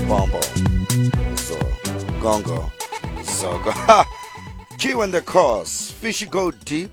Bombo. So, Gongo. Zogo. Ha! Q and the Cause. Fishy Go Deep.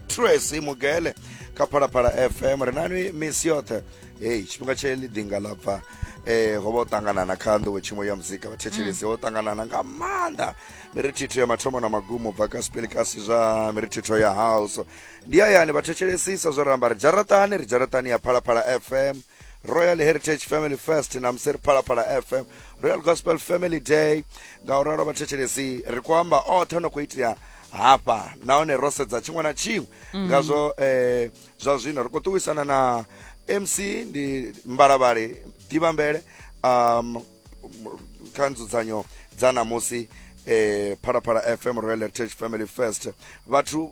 Tracy Mugele. Kapalapala FM. Ri nani misi yoṱhe. Hey, tshifhinga tshe ḽi ḓinga ḽa bva. Eh, ho vha u ṱangana na kha nḓowe tshiṅwe ya muzika vhathetshelesi ho ṱanganana nga maanḓa mirithitho ya mathomo na magumo bva ka sipelikasi zwa mirithitho ya house ndi hayani vhathetshelesisa zwo ramba ri dzharaṱani ri dzharaṱani ya phalaphala fm royal heritage family fest na musi ri phalaphala fm royal gospel family day nga u ralo vhathetshelesi ri khou amba oṱhe no khou itea hafha nahone ro sedza tshiṅwe na tshiṅwe ngazwo eh, zwa zwino ri khou ṱuwisana na mc ndi mbalavhali ḓivhambele um, kha nzudzanyo dza namusi eh, phalaphala fm royal heritage family fest vhathu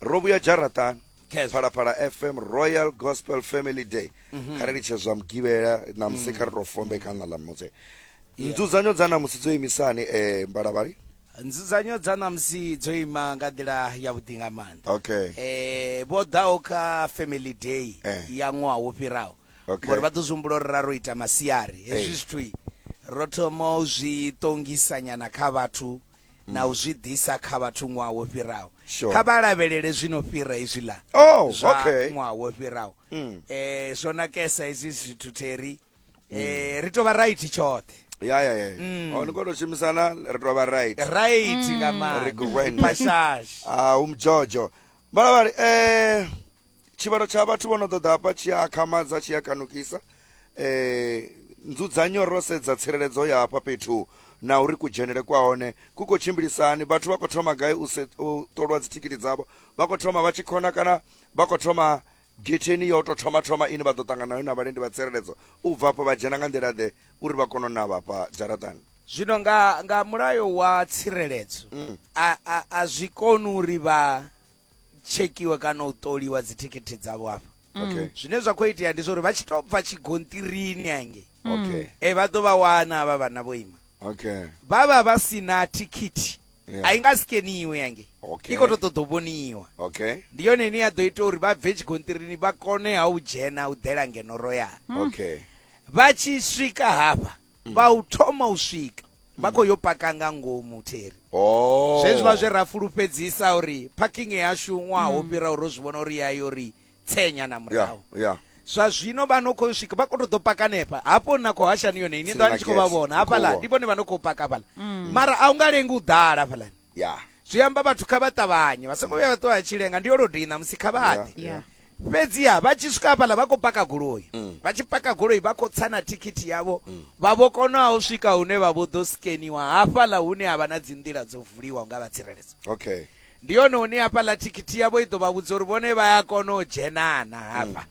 ro vhuya dzharaṱani phalaphala fm royal gospel family day mhm. kha ri litshe zwa mugivhela na musi mm. kha ri to fombe kha ṋa ḽa mutse nzudzanyo dza namusi dzo imisani um eh, mbalavhali nzudzanyo dza namusi dzo ima nga nḓila yavhuḓi nga maanḓa okay um vho ḓaho kha family day eh. ya ṅwaha wo fhiraho ngori vha ḓo zwi humbula uri ra ro ita masiari hezwi zwithui ro thoma u zwi ṱongisanyana kha vhathu na u zwi ḓisa kha vhathu ṅwaha wo fhiraho sure. kha vha lavhelele zwino fhira izwiḽa oh, zwa okay. ṅwaha wo fhiraho mm. eh, zwo nakesa izwi zwithu theri mm. eh, ri tovha right tshoṱhe ya ya ya mm. oh, ni kona u shumisana ri tovha right right mm. nga maanḓa ri gwen pashash ah umjojo balavhali eh tshivhalo tsha vhathu vho no ḓoḓa hafha tshi a akhamadza tshi a kanukisa eh nzudzanyo ro sedza tsireledzo ya hafha fhethu na uri kudzhenele kwa hone ku khou tshimbilisani vhathu vha khou thoma gai u se- u ṱolwa dzithikhithi dzavho vha khou thoma vha tshi khona kana vha khou thoma getheni ya u tou thoma thoma ine vha ḓo ṱangana nayo na vhalendi vha tsireledzo u bva afho vha dzhena nga nḓila ḓe uri vha kone u navha hafha dzharaṱani zwino nga nga mulayo wa tsireledzo a a a zwi koni uri vha tshekhiwa kana u ṱoliwa dzithikhithi dzavho hafha okay zwine zwa khou itea ndi zwa uri vha tshi tou bva tshigontirini hange okay e vha ḓo vha wana havha vhana vho ima okay vha vha vha si na thikhithi Yeah. a i nga sikeniwe yange Okay. i khou tou ṱoḓa u vhoniwa okay ndi yone ine ya ḓo ita uri vha bve tshigontirini vha kone ha u dzhena u ḓela ngeno royal okay vha tshi swika hafha mm. vha u thoma u swika vha mm. khou yo paka nga ngomu theri oh. zwezwi vha zwe ra fulufhedzisa uri parking yashu ṅwaha wo mm. fhira uri zwi vhona uri yayo ri tsenya na murahu zwa zwino vha no khou swika vha khou tou ḓo paka nepa hafho na khou hashani yone ini ndo ni tshi khou vha vhona hafhaḽa ndi vhone vha no khou paka hafhaḽa mara a u nga lengi u ḓala hafhaḽani Yeah. zwi amba vhathu kha vha ṱavhanye vha songo vhuya vha ṱuwa vha tshi lenga ndi yo lodei ṋamusi kha vha ḓe Yeah. fhedziha vha tshi swika hafhaḽa vha khou paka goloi Mm. vha tshi paka goloi vha khou tsa na thikhithi yavho vha vho kona u swika hune vha vho ḓo skeniwa hafhaḽa hune ha vha na dzi nḓila dzo vuliwa nga vha tsireledzo Okay. ndi yone hune hafhaḽa thikhithi yavho i ḓo vha vhudza uri vhone vha ya kona u dzhenana hafha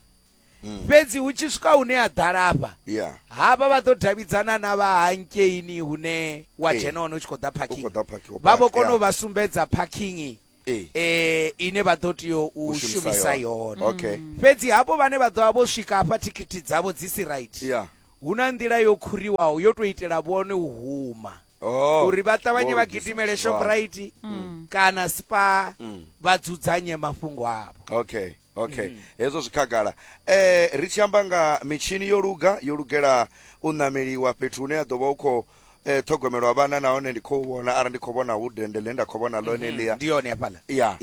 Mm. fhedzi hu tshi swika hune ha ḓala afha ya hafha vha ḓo davhidzana na vha hankeini hune wa Ee. dzhena hone u tshi khou ḓa u khou parking ḓa phakhiwa vha vho kona u vha sumbedza parking ee eh ine vha ḓo tea u u shumisa shumisa yone okay fhedzi hafho vhane vha ḓovha vho swika hafha thikhithi dzavho dzi si right ya hu na nḓila yo khuriwaho yo tou itela vhone u huma oh uri vha ṱavhanye vha Lord Jesus. gidimele Wow. shoprite kana spa vha dzudzanye mafhungo avho okay okay mm. hezwo zwi khagala eh ri tshi amba nga mitshini yo luga yo lugela u nameliwa fhethu hune ya ḓo vha u khou eh, ṱhogomelwa vhana nahone ndi khou vhona arali ndi khou vhona hu dende ḽe nda khou vhona ḽone mhm. ḽia ndi yone hafhaḽa ya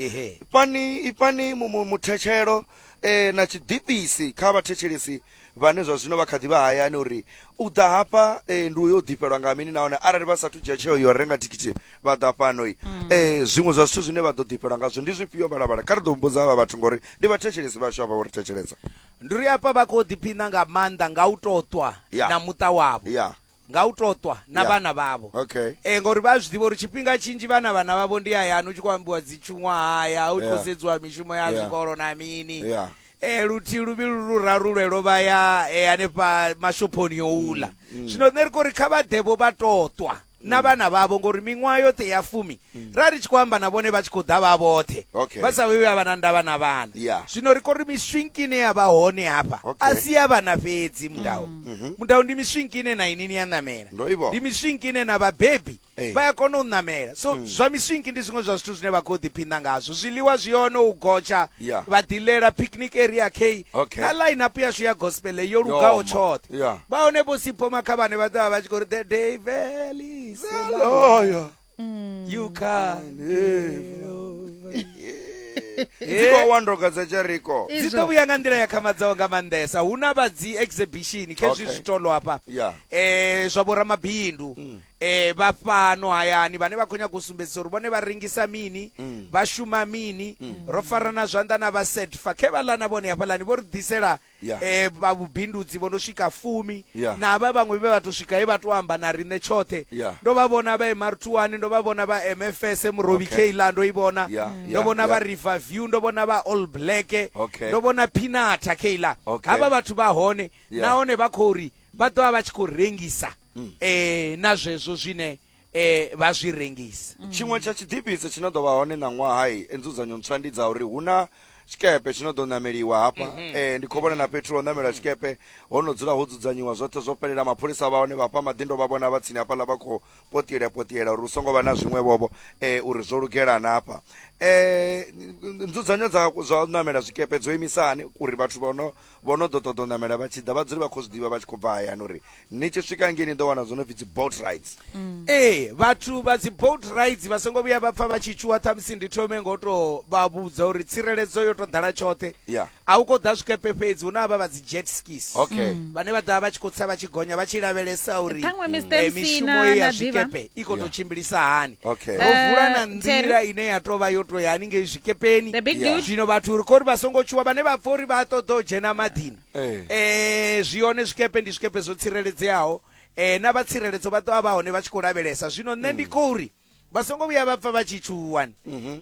fani ifani muthetshelo eh, na tshiḓipisi kha vhathetshelesi vhane zwa zwino vha kha ḓi vha hayani uri u ḓa hafha eh, ndi uyo u ḓifhelwa nga mini nahone arali vha sathu dzhia tsheo yo renga thikhithi vha ḓa fhano i eh, zwiṅwe zwa zwithu zwine vha ḓo ḓifhelwa ngazwo ndi zwifhio vhalabala kha ri ḓo mbudza havha vhathu ngori ndi vhathetshelesi vhashu havha vho ri thetshelesa Ndi ri hafha vha khou ḓiphina nga maanḓa nga u tou ṱwa Ya. na muṱa wavho. ya nga u tou ṱwa na Yeah. vhana vhavho okay e ngori vha zwi ḓivha uri tshifhinga tshinzhi vhana vhana vhavho ndi hayani u tshi khou ambiwa dzitshuṅwahaya u tshi khou Yeah. sedziwa mishumo ya Yeah. zwikolo na mini Yeah. e luthihi luvhili lu raru lwelo vha ya e, hanefha mashophoni yo ula Mm, zwino nṋe ri khou ri kha vha ḓevho vha tou ṱwa na vhana vhavho ngori miṅwaha yoṱhe ya fumi ra ri tshi khou amba na vhone vha tshi khou ḓa vha vhoṱhe Okay. vha sa vhuyi vha vha na ndavha na vhana Yeah. zwino ri khou ri miswinki ine ya vha hone hafha Okay. a si ya vhana fhedzi mudau mudau ndi miswinki ine na inini ya ṋamela Ndo i vhona. ndi miswinki ine na vhabebi Eh. vha ya kona u ṋamela so zwa miswinki ndi zwiṅwe zwa zwithu zwine vha khou ḓiphina ngazwo zwiḽiwa zwi hone u gotsha Yeah. vha ḓilela picnic area k Okay. na line up yashu ya gospel yo lugaho ma. tshoṱhe Yeah. vha hone vho sipho makhavhane vha ḓovha vha tshi khou ri the day valley is Hello, yeah. you can dziko wa ndoga dza jeriko dzi ḓo Izvo. vhuya nga nḓila ya khamadzaho nga maanḓesa hu na vha dzi exhibition kha hezwi Okay. zwitolo hafha Yeah. eh zwa vhoramabindu eh vha fhano hayani vhane vha khou nyanga u sumbedzisa uri vhone vha rengisa mini vha shuma mini ro farana zwanḓa na vha setfa khe vha ḽana vhone hafhaḽani vho ri ḓisela vha vhubindudzi vho no swika fumi na havha vhaṅwe vhe vha tou swika he vha tou amba na riṋe tshoṱhe ndo vha vhona vha emartuani ndo vha vhona vha mfs murovi keila ndo i vhona ndo vhona vha river view ndo vhona vha all black ndo vhona pinata keila havha vhathu vha hone nahone vha khou ri vha ḓo vha vha tshi khou rengisa um na zwezwo zwine eh vha zwi rengisa mm. tshiṅwe tsha tshiḓifhisi tshi no ḓo vha hone ṋaṅwaha i e, nzudzanyo ntswa ndi dza uri hu na tshikepe tshi no ḓo ṋameliwa hafha mm -hmm. eh, ndi khou vhona na fhethu lwa u ṋamela tshikepe ho no dzula ho dzudzanyiwa zwoṱhe zwo fhelela mapholisa vha hone vhafha maḓindo vha vhona vha tsini hafhaḽa vha khou potiela potiela uri hu songo vha na zwiṅwe vhovho eh, uri zwo lugela na hafha eh, nzudzanyo dza zwa u ṋamela zwikepe dzo imisani uri vhathu vha no vho no ḓo ṱoḓa u ṋamela vha tshi ḓa vha dzule vha khou zwi ḓivha vha tshi khou bva hayani uri ni tshi swika ngei ni ḓo wana zwo no pfi dzi boat rides ee vhathu vha dzi boat rides vha songo vhuya vha pfa vha tshi tshuwa ṱhamusi ndi thome ngo to vha vhudza uri tsireledzo yo to ḓala tshoṱhe Yeah. a u khou ḓa zwikepe fhedzi hu na havha vha dzi jet skis Okay. Mm. vhane vha ḓa vha tshi khou tsa vha tshi gonya vha tshi lavhelesa uri Ṱhaṅwe Mr. eh, MC mishumo na- ye ya na ḓivha. zwikepe i khou tou Yeah. tshimbilisa hani okay Eh, ro vula na Terry. nḓila ine ya tou vha yo tou ya haningei zwikepeni The big Yeah. dude. zwino vhathu uri khori vha songo tshuwa vhane vha pfa uri vha ṱoḓa u dzhena maḓini Eh. eh zwi hone zwikepe ndi zwikepe zwo tsireledzeaho eh na vha tsireledzo vha ḓovha vha hone vha tshi khou lavhelesa zwino nṋe ndi khou ri vha songo vhuya vha pfa vha tshi tshuwani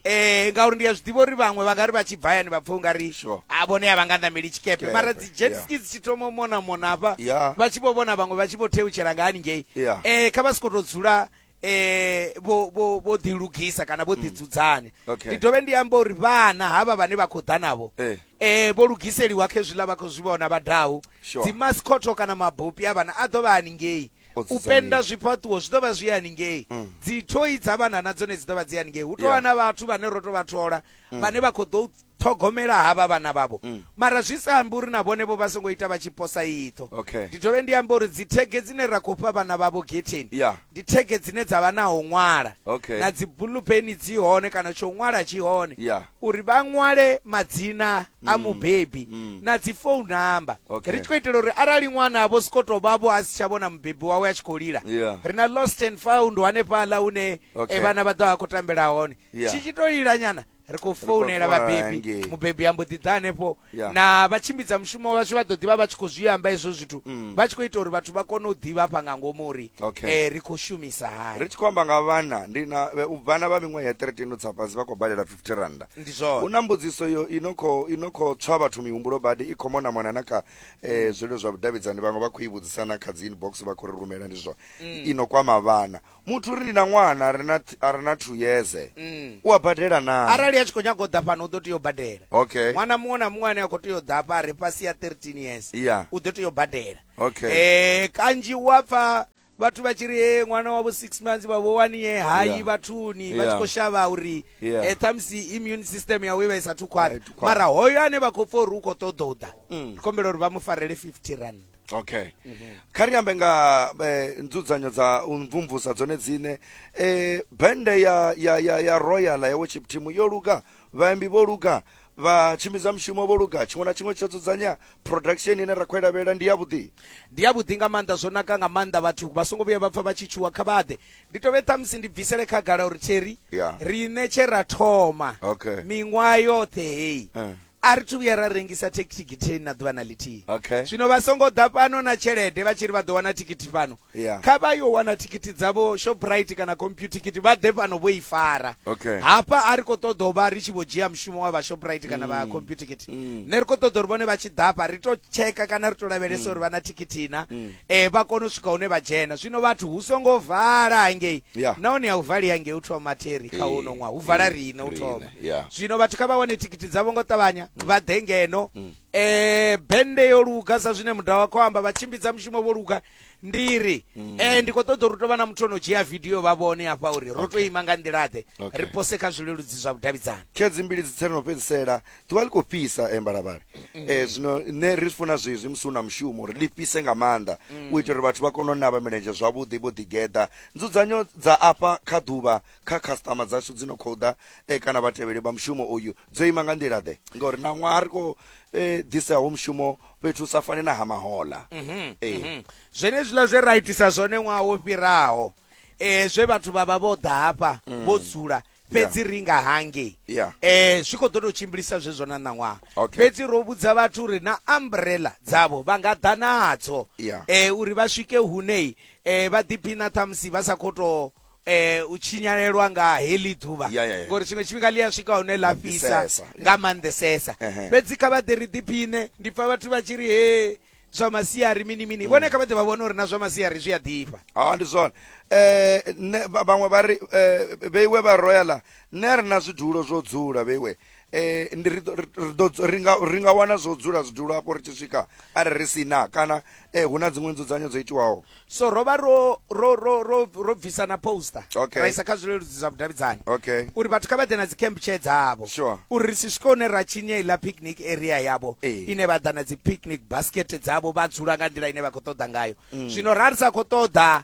eh ngauri ndi a zwi ḓivha uri vhaṅwe vha nga ri vha tshi bva yani vha pfa u nga ri Sure. a vhone a vha nga ṋameli tshikepe Tshikepe, mara dzi jet yeah. ski dzi tshi thoma u mona mona hafha Yeah. vha tshi vho vhona vhaṅwe vha tshi vho theutshela nga haningei Yeah. eh kha vha si khou tou dzula eh vho vho vho ḓi lugisa kana vho ḓi mm. dzudzanya okay. ndi dovhe ndi amba uri vhana havha vhane vha khou ḓa navho eh. eh vho lugiseliwa khe zwiḽa vha khou zwi vhona vha dahu sure. dzi mascotho kana mabopi a vhana a ḓo vha haningei u penda zwifhaṱuwo zwi ḓo vha zwi haningei mm. dzi thoi dza vhana na dzone dzi ḓo vha dzi haningei hu tovha yeah. na vhathu vhane ro to vha thola mm. vhane vha khou ḓo ṱhogomela havha vhana vhavho mm. mara zwi sa ambi uri na vhone vho vha songo ita vha tshi posa iṱho okay. ndi dovhe ndi amba uri dzithege dzine ra khou fha vhana vhavho getheni yeah. ndi thege dzine dza vha naho ṅwala okay. na dzibulupeni dzi hone kana tsho ṅwala tshi hone yeah. uri vha ṅwale madzina mm. a mubebi mm. na dzi phone number okay. ri tshi khou itela uri arali ṅwana avho siko to vhavho a si tsha vhona mubebi wawe a tshi khou lila yeah. ri na lost and found hanefhaḽa une okay. e vhana vha ḓo a khou tambela hone yeah. tshi tshi to lilanyana ri khou founela vhabebi mubebi ambo ḓi ḓa hanefho na vha tshimbidza mushumo vhashu vha ḓo ḓivha vha tshi khou zwi amba hezwo zwithu mm. vha tshi khou ita uri vhathu vha kone u ḓivha fha nga ngomu uri eh, ri khou shumisa hani ri tshi khou amba nga vhana ndi na vhana vha miṅwaha ya 13 tsa fhasi vha khou badela 50 randa ndi zwone hu na mbudziso yo ino kho ino kho tswa vhathu mihumbulo badi i khomo na mwana na kha eh, mm. zwilo zwa vhudavhidzani vhaṅwe vha khou i vhudzisa na kha dzi inbox vha khou ri rumela ndi zwone mm. ino kwama vhana muthu ri na ṅwana ri na th- a re na two years Mm. u a badela naa arali a tshi khou nyaga u ḓa fhano u ḓo tea u badela okay ṅwana muṅwe na muṅwe ane a khou tea u ḓa afha a re fhasi ya 13 years Yeah. u ḓo tea u badela Okay. Eh, kanzhi u a pfa vhathu vha tshi ri "Eh, ṅwana wavho six months vhavho wani ye hayi Yeah. vhathuni vha tshi Yeah. khou shavha uri Yeah. eh, ṱhamusi immune system yawe i vha i sathu khwaṱha Ai, thu khwaṱha. mara hoyo ane vha khou pfa uri u khou ṱoḓa u ḓa Mm. ri kombela uri vha mu farele 50 rand okay mm -hmm. kha ri ambe nga eh, nzudzanyo dza u mvumvusa dzone dzine eh, bende ya, ya, ya, ya royal ya worship team yo luga vhaimbi vho luga vha tshimbidza mushumo vho luga tshiṅwe na tshiṅwe tsho dzudzanya production ine ra khou ilavhelela ndi yavhuḓi ndi yavhuḓi nga maanḓa zwo naka nga maanḓa vhathu vha songo vhuya vha pfa vha tshi tshuwa kha vhaḓe ndi tovhe ṱhamusi ndi bvisele khagala uri tsheri yeah. riṋe tshe ra thoma okay. miṅwaha yoṱhe heyi uh. a ri thu vhuya ra rengisa thekithikitheni na ḓuvha na ḽithihi okay. zwino vha songo ḓa fhano na tshelede vha tshi ri vha ḓo wana thikhithi fhano yeah. kha vha yo wana thikhithi dzavho shoprite kana computikhithi vha ḓe fhano vho i fara okay. hafha a ri khou ṱoḓa u vha ri tshi vho dzhia mushumo wa vha shoprite kana vha mm. computikhithi mm. ne ri khou ṱoḓa uri vhone vha tshi ḓafha ri to tsheka kana ri to lavhelesa mm. uri vha na thikhithi na mm. e, vha kone u swika hune vha dzhena zwino vhathu hu songo vala hangei yeah. nahone ya u vali hangei u thoma theri kha uno ṅwaha hu vala riṋe u thoma Yeah. zwino vhathu kha vha wane thikhithi dzavho ngo ṱavhanya mm. vha ḓe ngeno um mm. eh, bende yo luga sa zwine muda wa khou amba vha tshimbidza mushumo vho luga ndi ri um ndi khou ṱoḓa uri tou vha na muthu ono dzhia vidio vha vhone hafha uri ro to ima nga nḓilaḓe ri pose kha zwileludzi zwa vhudavhidzani khedzi mbili dzi tseno fhedzisela ḓuvha ḽi khou fhisa embalavhale um eh, zwino nṋe ri funa zwezwi musi hu na mushumo uri ḽi fhise nga maanḓa u itela uri vhathu vha kone u navha milenzhe zwavhuḓi vho ḓigeḓa nzudzanyo dza afha kha ḓuvha kha khasiṱama dzashu dzi no khou ḓa eh, kana vhatevheli vha mushumo uyu dzo ima nga nḓila ḓe ngauri na ṅwaha ri khou eh, ḓisaho mushumo fhethu hu sa fane na ha mahola Mhm, Eh. mhm. zwenezwiḽa zwe ra itisa zwone ṅwaha wo fhiraho um zwe vhathu vha vha vho ḓa hafha vho dzula fhedzi ri nga hangei Mm. Yeah. um zwi khou ḓo tou tshimbilisa zwezwo na ṋaṅwaha Okay. fhedzi ro vhudza vhathu uri na umbrella dzavho vha nga ḓa nadzo Yeah. um uri vha swike hunei um vha ḓiphina ṱhamusi vha sa khou tou eh u tshinyalelwa nga heḽi ḓuvha Ya, ya, ya. ngori tshiṅwe tshifhinga ḽi a swika hune ḽa fhisa Fhisesa. nga maanḓesesa Ehe. fhedzi kha vha ḓe ri ḓiphine ndi pfa vhathu vha tshi ri he zwa masiari mini mini Mm. vhone kha vha ḓe vha vhone uri na zwa masiari zwi a ḓifha ha ndi zwone eh nṋe vha- vhaṅwe vha ri eh, vheiwe vha royala nṋe a ri na zwidulo zwo dzula vheiwe eh ndi ri ḓo ri nga ri nga wana zwo dzula zwidulo afho ri tshi swika arali ri si na kana eh hu na dziṅwe nzudzanyo dzo itiwaho so ro vha ro ro ro ro ro bvisa na poster Okay. ra isa kha zwileludzi zwa vhudavhidzani okay uri vhathu kha vha ḓe na dzi camp chair dzavho Sure. uri ri si swike hune ra tshinya iḽa picnic area yavho Ee. ine vha ḓa na dzi picnic basket dzavho vha dzula nga nḓila ine vha khou ṱoḓa ngayo zwino ra ri sa khou ṱoḓa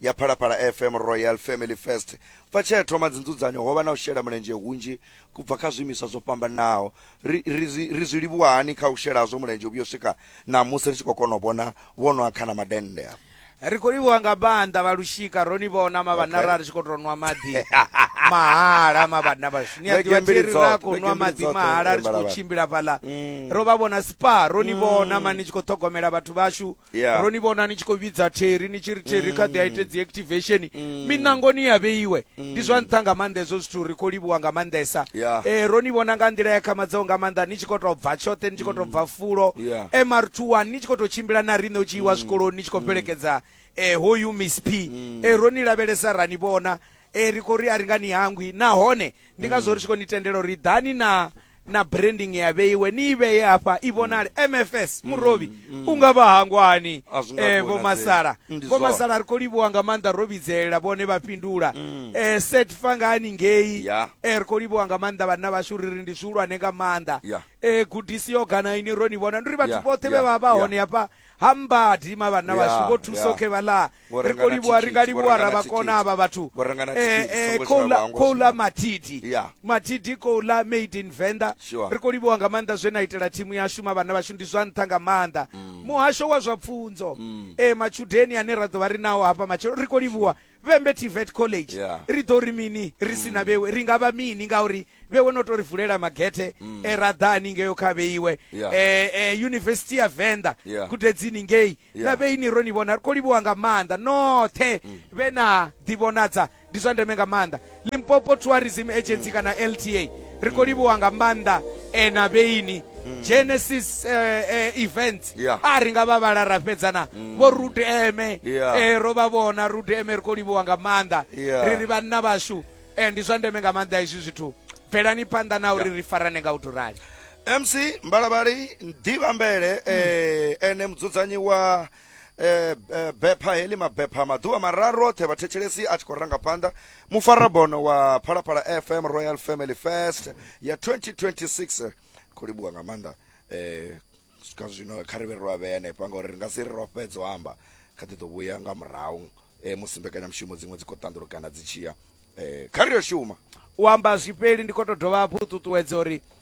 ya Phalaphala FM Royal Family First. Bva tshea thoma dzinzudzanyo ho vha na u shela mulenzhe hunzhi kubva kha zwiimiswa zwo fhambanaho. Ri, ri, ri zwi livhuwa hani kha u shela hazwo mulenzhe u vhuyo swika ṋamusi ri tshi khou kona u vhona vho nwa khana madennde a ri khou livhuwa nga maanḓa vha lushika ro ni vhona mavhanna okay. ra ri tshi khou tou nwa maḓi mahala mavhanna vhashu ni a ḓivha tiri ra khou nwa maḓi mahala ri tshi khou tshimbila fhaḽa mm. ro vha vhona spa ro ni vhona mm. mani tshi khou ṱhogomela vhathu vhashu Yeah. ro ni vhona ni tshi khou vhidza theri ni tshi ri theri kha ḓi a ite dzi activation Mm. minangoni ya vheiwe ndi zwa nṱha nga maanḓa hezwo zwithu ri khou livhuwa nga maanḓesa Yeah. eh, ro ni vhona nga nḓila ya khamadzaho nga maanḓa ni tshi khou tou bva tshoṱhe ni tshi khou tou bva fulo Mm. Yeah. Mm. mr1 ni tshi khou tou tshimbila na riṋe u tshi iwa zwikoloni ni tshi khou fhelekedza eh, hoyu miss p Mm. eh, ro ni lavhelesa ra ni vhona eh, ri khou ri a ri nga ni hangwi nahone ndi ngazwo ri tshi khou ni tendela uri ḓani na na branding ya vheiwe ni i vheye hafha i vhonale mfs mm, murovhi mm. u nga vha hangwani eh, vho masala vho masala ri khou livhuwa nga maanḓa ro vhidzelela vhone vha fhindula mm. eh, set fa nga haningei yeah. eh, ri khou livhuwa nga maanḓa vhanna vhashu ri ri ndi zwihulwane nga maanḓa yeah. eh, gudisi yo gana ini ro ni vhona ndi ri vhathu yeah. vhoṱhe vhe vha vha hone hafha ha mbadi ima vhanna Ya, vhashu vho thusa ya. okay vhala Vho ri renga khou na livhuwa ri nga thikhithi, vho livhuwa renga na ravhakona thikhithi. avha vhathu Vho renga na Eh, thikhithi, eh, songo khou ḽa- shavha, ngo khou ḽa shavha. matidi Ya. matidi khou ḽa made in venḓa Sure. ri khou livhuwa nga maanḓa zwe na itela thimu yashu ma vhanna vhashu ndi zwa nṱha nga maanḓa muhasho wa zwa pfunzo eh matshudeni ane ra ḓo vha ri nawo hafha matshelo ri khou livhuwa Vhembe TVET College Yeah. ri ḓo ri mini ri si na vhewe ri nga vha mini ngauri vhewe no tou ri vulela magethe e ra ḓa haningeo kha vheiwe Yeah. eh, eh, yunivesithi ya venḓa Yeah. gudedzini ngei na Yeah. vhei ni ro ni vhona ri khou livhuwa nga maanḓa noṱhe vhe na ḓivhonadza ndi zwa ndeme nga maanḓa limpopo tourism agency kana lta ri khou livhuwa nga maanḓa eh, na vheini genesis eh, eh, events Yeah. a ri nga vha vhala ra fhedzana vho rudeme Yeah. eh, ro vha vhona rudeme ri khou livhuwa nga maanḓa Yeah. ri ri vhanna vhashu eh, ndi zwa ndeme nga maanḓa izwi zwithu bvelani phanḓa na uri ri farane nga u tou rali mc mbalabali ndivhambele eh, ene mudzudzanyi wa eh, eh, bepha heḽi mabepha maḓuvha mararu oṱhe vhathetshelesi a tshi khou ranga phanḓa mufarabono wa phalaphala fm royal family fest ya 2026 khou livhuwa nga maanḓa eh, swika zwino kha ri vhe ro avhea hanefha ngauri ri nga si ri ro fhedza u amba kha ḓi ḓo vhuya nga murahu eh, musi mbekanyamushumo dziṅwe dzi khou ṱanḓulukana dzi tshiya eh, kha ri yo shuma u amba zwifheli ndi khou tou dovha hafhu u ṱuṱuwedza uri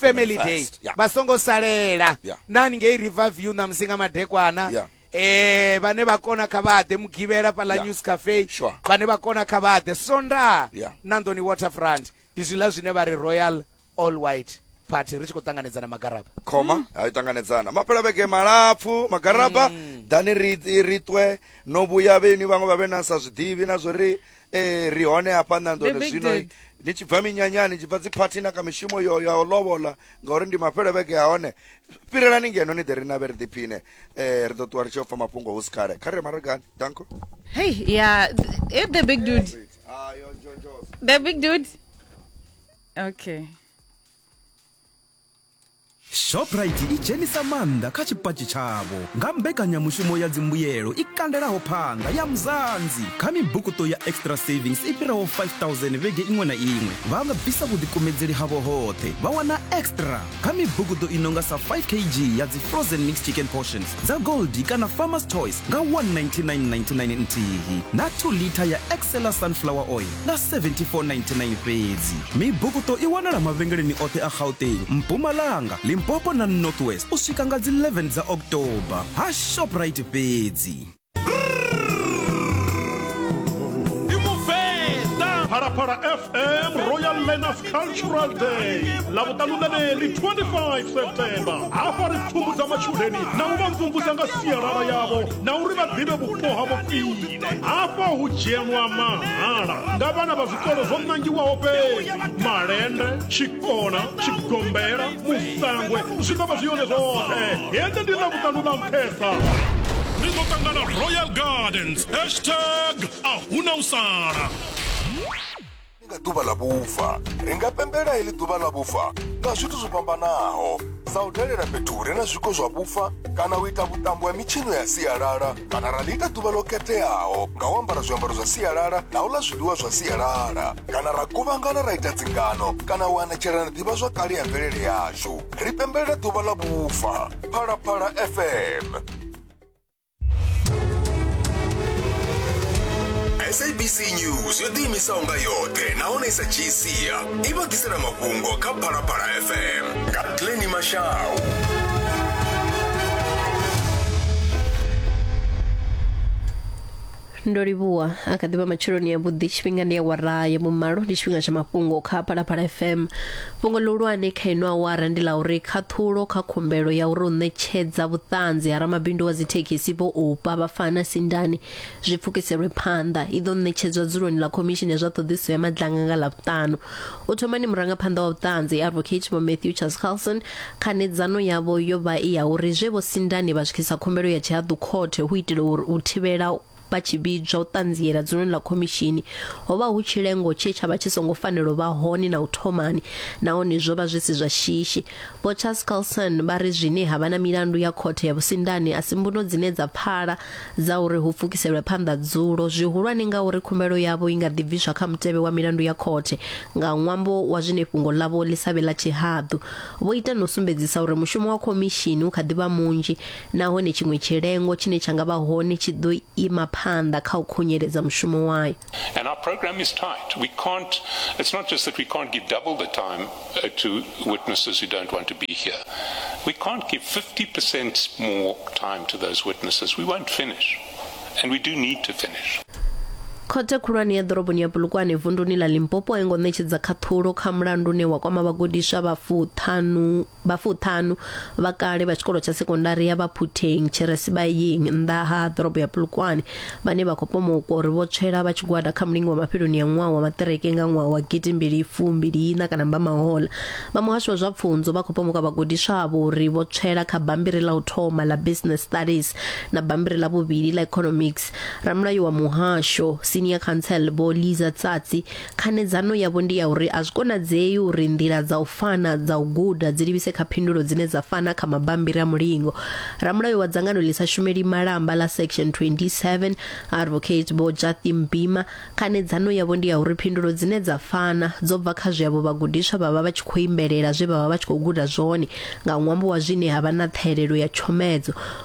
family day vha songo salela nani ngei river view na musinga madekwana yeah. eh vane va kona kha va ḓe mugivhela fhaḽa yeah. news cafe sure. vane va kona kha va ḓe sonda yeah. nandoni waterfront ndi zwiḽa zwine vha ri royal all white party ri tshi khou ṱanganedzana magaraba khoma mm. hai ṱanganedzana mapela vhege malapfu magaraba mm. dani ri ri twe no vhuya vheni vhaṅwe vha vhe na sa zwiḓivhi na zwo ri ee ri hone hafha nandone zwino ni tshi bva minyanyani tshi bva dziphathi na kha mishumo yo ya u lovola ngauri ndi mafhelo vhege ha hone fhirelani ngeno ni ḓe ri navhe ri ḓiphine um ri ḓo ṱuwa ri tshi ofha mafhungo hu si khale kha ri re maragani danko hei ya e the big dude ah, the big dude okay shoprite i dzhenisa maanḓa kha tshipatshi tshavho nga mbekanyamushumo ya dzimbuyelo i kandelaho phanga ya mzanzi kha mibukuṱo ya extra savings i fhiraho 5000 vhege iṅwe na iṅwe vha nga bvisa vhuḓikumedzeli havho hoṱhe vha wana extra kha mibukuṱo i nonga sa 5 kg ya dzi frozen mixed chicken portions dza gold kana farmers choice nga 19999 nthihi na 2 liter ya excella sunflower oil nga 7499 fhedzi mibukuṱo i wanala mavhengeleni oṱhe a gauteng mpumalanga limpopo na north west u swika nga dzi 11 dza october ha shoprite fhedzi Phalaphala FM Royal Learners cultural day ḽa vhuṱalunaneli 25 september hafha ri pfumbudza matshudeni na u vha mvumvusa nga sialala yavho na uri vha ḓivhe vhupo havho khwine hafha hu dzhenwa mahala nga vhana vha zwikolo zwo ṋangiwaho fhedzi malende tshikona tshigombela musangwe zwi ḓo vha zwi yone zwoṱhe hende ndi ḽa vhuṱanu ḽa nṱhesa ri ḓo ṱangana royal gardens hashtag a huna u sala ndi nga ḓuvha ḽa vhufa ri nga pembela heḽi ḓuvha ḽa vhufa nga zwithu zwo fhambanaho sa u dalela fhethu hu re na zwiko zwa vhufa kana u ita vhuṱambo ha mitshino ya sialala kana ra ḽi ita ḓuvha ḽo khetheaho nga u ambara zwiambaro zwa sialala na u ḽa zwiḽiwa zwa sialala kana ra kuvhangana ra ita dzingano kana u anatshelana ḓivha zwa kale ya mvelele yashu ri pembelela ḓuvha ḽa vhufa phalaphala fm sabc news yo ḓiimisaho nga yoṱhe nahone i sa dzhii sia i vha ḓisela mafhungo kha phalaphala fm nga pleni mashau ndo livhuwa a kha ḓivha matsheloni ya vhuḓi tshifhinga ndi awara ya vhumalo ndi tshifhinga tsha mafhungo kha phalaphala fm fhungo ḽihulwane kha ino awara ndi ḽa uri khaṱhulo kha khumbelo ya uri u ṋetshedza vhuṱanzi ha ramabindu wa dzithekhisi vho upa vha fana sindani zwi pfukiselwe phanḓa i ḓo ṋetshedzwa dzuloni ḽa khomishini ya zwa ṱhoḓisiso ya madlanga nga ḽavhutanu u thomani murangaphanḓa wa vhuṱanzi advocate vho matthew charles carlson Khanedzano yavho yo vha i ya uri zwe Vho Sindani vha swikisa khumbelo ya tshihaḓu khothe hu itela uri u thivhela vha tshi vhidzwa u ṱanziela dzuloni ḽa khomishini ho vha hu tshilengo tshe tsha vha tshi songo fanela u vha hone na u thomani nahone zwo vha zwi si zwa shishi. Vho Charles Carlson vha ri zwine ha vha na milandu ya khothe ya vhusindani a si mbuno dzine dza pfala dza uri hu pfukiselwe phanḓa dzulo zwihulwane ngauri khumbelo yavho i nga ḓi bviswa kha mutevhe wa milandu ya khothe nga ṅwambo wa zwine fhungo ḽavho ḽi sa vhe ḽa tshihaḓu vho ita no sumbedzisa uri mushumo wa khomishini u kha ḓi vha munzhi nahone tshiṅwe tshilengo tshine tsha nga vha hone tshi ḓo ima phanḓa kha u khunyeledza mushumo wayo And our program is tight. We can't, it's not just that we can't give double the time uh, to witnesses who don't want to be here. We can't give 50% more time to those witnesses. We won't finish. And we do need to finish. khothe khulwane ya ḓoroboni ya bulukwane vunduni ḽa limpopo a i ngo ṋetshedza khaṱhulo kha mulandu une wa kwama vhagudiswa vha fuṱhanu Vha fuṱhanu vha kale vha tshikolo tsha sekondari ya Baphutheng tshi re Sibayeng nnḓa ha ḓorobo ya Polokwane vhane vha khou pomokwa uri vho tswela vha tshigwada kha mulingo wa mafheloni ya ṅwaha wa maṱireke nga ṅwaha wa gidimbili fumbili ina kana mbamahola vha muhasho wa zwa pfunzo vha khou pomokwa vhagudiswa avho uri vho tswela kha bambiri ḽa u thoma ḽa business studies na bambiri ḽa vhuvhili ḽa economics ramulayo wa muhasho senior council vho Liza Tsatsi Khanedzano yavho ndi ya uri a zwi konadzei uri nḓila dza u fana dza u guda dzi livhise kha phindulo dzine dza fana kha mabammbiri a mulingo. Ramulayo wa dzangano ḽi sa shumeli malamba ḽa Section 27, Advocate Vho Jathy Mbhima, khanedzano yavho ndi ya uri phindulo dzine dza fana dzo bva kha zwe avho vhagudiswa vha vha vha tshi khou imbelela zwe vha vha vha tshi khou guda zwone nga ṅwambo wa zwine ha vha na ṱhahelelo ya tshomedzo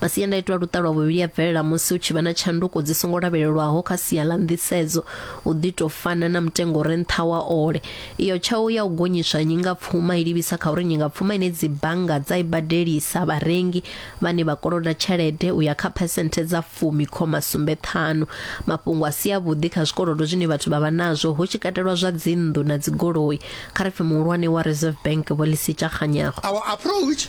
Masiandaitwa a luṱa lwa vhuvhili a bvelela musi hu tshi vha na tshanduko dzi songo lavhelelwaho kha sia ḽa nḓisedzo, u ḓi tou fana na mutengo u re nṱha wa ole. Iyo tshau ya u gonyiswa ha nyingapfuma i livhisa kha uri nyingapfuma ine dzibannga dza i badelisa vharengi vhane vha koloda tshelede u ya kha phesenthe dza fumi khoma sumbe ṱhanu. Mafhungo a si avhuḓi kha zwikolodo zwine vhathu vha vha nazwo, hu tshi katelwa zwa dzinnḓu na dzigoloi, kha ri pfi muhulwane wa Reserve Bank Vho Lesitsha Kganyago. Our approach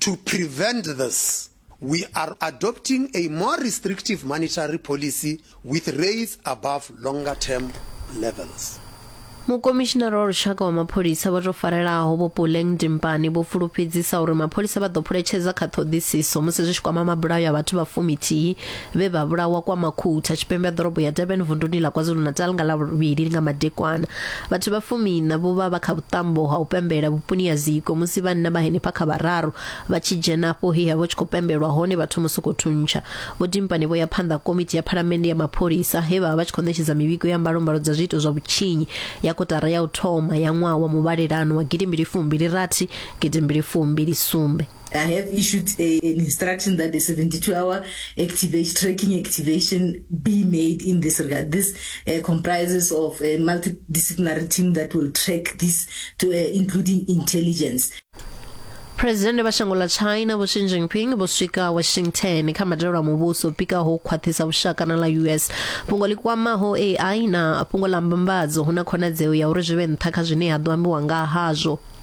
To prevent this, we are adopting a more restrictive monetary policy with rates above longer term levels. Mukomishinara wa Lushaka wa Mapholisa vha tou farelaho Vho Puleng Dimpane vho fulufhedzisa uri mapholisa vha ḓo phuletshedza kha ṱhoḓisiso musi zwi tshi kwama mabulayo a vhathu vha fumi-thihi vhe vha vhulawa kwa Makhutha tshipembe ha ḓorobo ya Durban vunduni ḽa KwaZulu-Natal nga Lavhuvhili nga madekwana. Vhathu vha fumiiṋa vho vha vha kha vhuṱambo ha u pembela vhuponi ha Ziko musi vhanna vha henefha kha vhararu vha tshi dzhena afho he ha vha tshi khou pembelwa hone vha thoma u sokou thuntsha. Vho Dimpane vho ya phanḓa komiti ya phalamennde ya mapholisa he vha vha vha tshi khou ṋetshedza mivhigo ya mbalombalo dza zwiito zwa vhutshinyi ya kotara ya u thoma ya ṅwaha wa muvhalelano wa gidimbili fumbili rathi gidimbili fumbili sumbe. I have issued a, an instruction that a 72 hour activation, tracking activation be made in this regard. This uh, comprises of a multidisciplinary team that will track this, to, uh, including intelligence. phuresidennde vha shango ḽa china vho xi jinping vho swika washington kha madalo a muvhuso pikaho u khwaṱhisa vhushaka na ḽa us fhungo ḽi kwamaho ai na fhungo ḽa mbambadzo hu na khonadzeo ya uri zwi vhe nṱha kha zwine ha ḓo ambiwa nga hazwo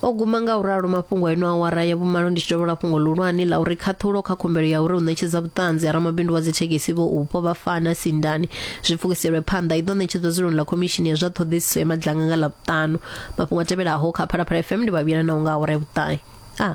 O guma nga u ralo mafhungo a ino awara ya vhumalo ndi tshi dovhola fhungo ḽihulwane ḽa uri khaṱhulo kha khumbelo ya uri u ṋetshedza vhuṱanzi ha ramabindu wa dzithekhisi vho upo vha fana sindani zwi pfukiselwe phanḓa i ḓo ṋetshedzwa dzuloni ḽa khomishini ya zwa ṱhoḓisiso ya madlanga nga ḽa vhuṱanu mafhungo a tevhelaho kha phalaphala fm ndi vhavhila na u nga awara ya vhuṱahe a ah.